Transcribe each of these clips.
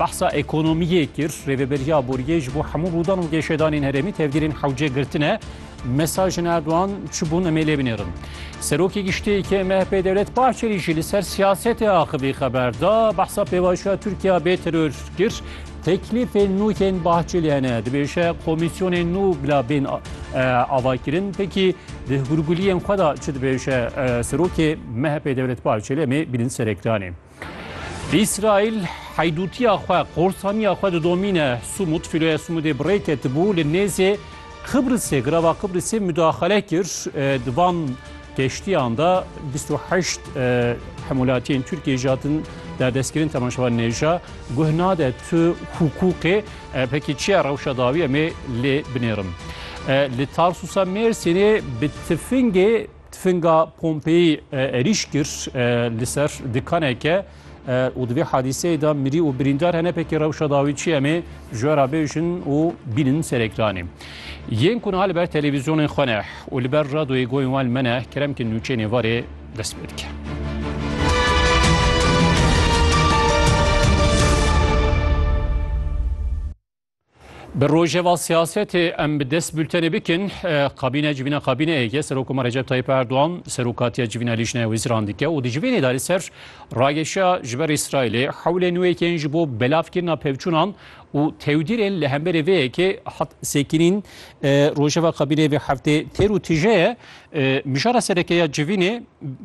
Behsa ekonomiyê kir, Rêveberiya Boriyê ji bo hemû rûdan û geşedanên herêmî tevgirên hewce girtine. Mesajên Erdogan çi bûn em ê lê binêrin. Serokê Giştî yê yê MHP'ê Dewlet Bahçelî jî li ser siyasetê axivî xeber da. Behsa pêvajoya Tirkiya bê teror kir. Teklîfên nû yên Bahçelî hene. Dibêje komîsyonên nû bila bên avakirin. Pekî di hûrguliyên xwe da çi dibêje serokê MHP'ê Dewlet Bahçelî em ê bînin ser ekranê. Îsraîl heydûtiya xwe, qorsaniya xwe didomîne. Sumut, fîloya Sumudê bi rê ketibû li nêzê Qibrisê, girava Qibrisê mudaxale kir. Di van geştiyan de bîst û heşt hemûlatiyên Tirkiyê jî hatin derdestkirin temaşevan nêja. Guh nade tu hukûqê pekî çiya rewşa dawî em ê lê binêrin. Li Tarsusa Mêrsînê bi tifingê Tifinga Pompeyî erîş kir li ser dikaneke û di vê hadîseyê de mirî û birîndar hene pekê rewşa dawî çi em ê ji we re bêjin û bînin serekranê. Yên ku niha li ber televîzyonên xwe ne û li ber radoyê goyên wan li me ne kerem ki nûçeyê nêvarê dest pê dike. Bi rojeva siyasetê em bi dest bültenê bikin. Kabîne civîna kabîneyê ye Serokoma Recep Tayyip Erdogan serokatiya civîna Lîjneya Wezîran dike û di civînê de li ser rageşiya ji ber Îsraîlê hewlên nû yekên ji bo belavkirina pevçûnan û tewdîrên li hemberê vê yekê hat sekirîn. Rojeva kabîneyê vê heftê têr û tije ye. Mijara sereke ya civînê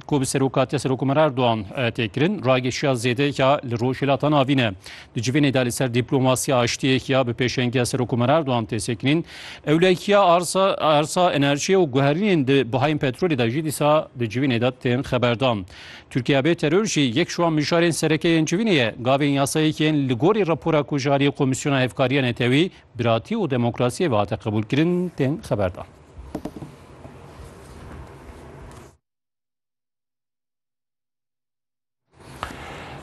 ku bi serokatiya Serokomara Erdogan tê kirin, ragêşiya zêdeyeke li Rojhilata Navîn ne. Di civînê de li ser dîplomasiya aştiyek ya bi pêşengiya Serokomara Erdogan tê sekinîn. Ewlekiya arsa enerjiyê û guherînên di bihayên petrolê de jî dîsa di civînê de tên xeberdan. Tirkiye bê teror jî yek ji wan mijarên sereke yên civînê ye. Gavên yasayek yên li gorî rapora ku ji aliyê Komîsyona Hevkariya Netewî, Biratî û Demokrasiyê ve hate qebûlkirin, tên xeberdan.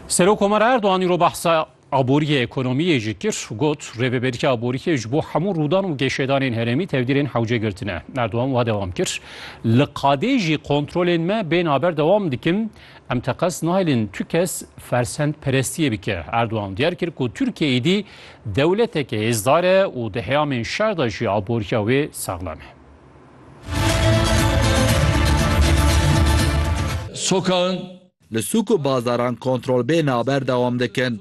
Serok Omar Erdoğan îro behsa aboriyê ekonomiyê jî kir û got rêveberîya aboriyê ji bo hemû rûdan û geşedanên herêmî tevdîrên hewce girtine. Erdoğan wa dewam kir, Li qadê jî kontrolên me bên haber dewam dikin, Em teqez nahêlin tu kes fersendperestiyê bike. Erdogan diyar kir ku Tirkiye êdî dewleteke hêzdar e û di heyamên şer de jî aboriya wê saxlem e. Sokaxin li sûk û bazaran kontrol bê naber dewam dikin.